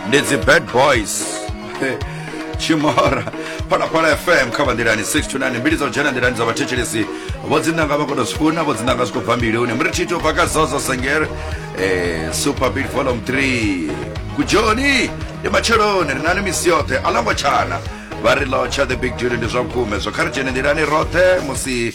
ndi dzi bad boys chimora phalaphala fm kha vanḓilani 629 mbili dza u dzhena nḓilani dza vhathetshelesi vho dzinanga vha kono zwifuna vho dzinanga zwi khou bva mbiluni mri thito bva ka zozo sengere eh, super big volume 3 kujoni ndi matsheloni ri nani misi yoṱhe a longo tshana vha ri lotsha the big duty ndi zwa vhukume zwo kha ri dzhene nḓilani roṱhe musi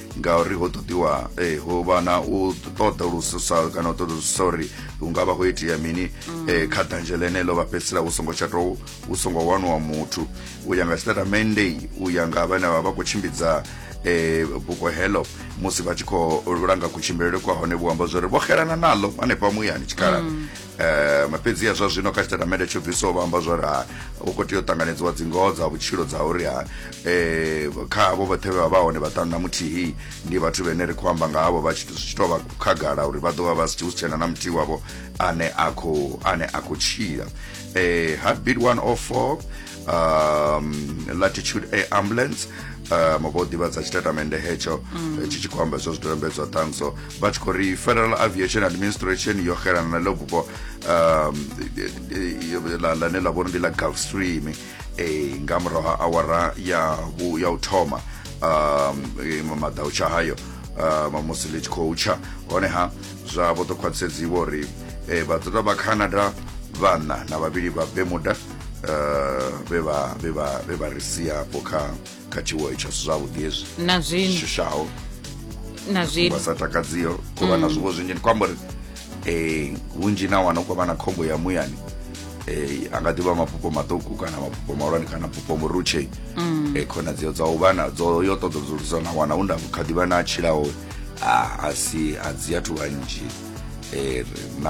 ngauri ho ṱoḓiwa eh, ho vha na u ṱoḓulusa kana u ṱoḓulusa uri hu nga vha ho itea mini mm. eh, kha danzhe ḽeneḽo vha fhedzisela hu songo tsha tou hu songo waniwa muthu u ya nga statamende u ya nga vhane vha vha khou tshimbidza eh, buko heḽo musi vha tshi khou langa kutshimbilele kwa hone vhu amba zwori vho xelana naḽo hanefha muyani tshikhalani mm. um fhedziha zwa zwino kha tshitatamende tsho bvisaho vha amba zwa uri ha u khou tea u ṱanganedziwa dzingoho dza vhutshilo dza uri ha um kha avho vhoṱhe vhe vha vha hone vhaṱanu na muthihi ndi vhathu vhene ri khou amba nga havho vha tshi tshi tou vha khagala uri vha ḓo vha vha si hu si tshena na muthihi wavho ane a khou ane a khou tshila um heartbeat 104 um latitude air ambulance um vho ḓivhadza tshitatamende hetsho tshi tshi khou amba zwo zwidodombedzwa ṱhanso vha tshi khou ri federal aviation administration yo xelana na ḽo bufho um, ḽane ḽa vhori ndi ḽa gulf stream eh, nga murahu ha awara ya u thoma um, eh, maḓa u tsha hayo um, musi ḽi tshi khou tsha honeha zwa vho ḓo khwaṱhisedziwa uri eh, vha ḓoḓa vha canada vhana na vhavhili vha bemuda vhe vha ri siapo kha kha tshiwo itsho si zwavhuḓi hezwi na zwino shushaho na zwino vha sa takadziho ku vha na mm. zwiwo zwinzhi ndi khou amba uri um vhunzhi na wana u khou vha na khombo ya muyani eh anga ḓivha mafhufho maṱuku kana mafhufho mahulwane kana mafhufho murutshei mm. eh khonadzeo dza u vha na dzo yo ṱoḓa dzulusa na wana u nda kha ḓivha na tshilaho a si a dzi athu vhanzhi eh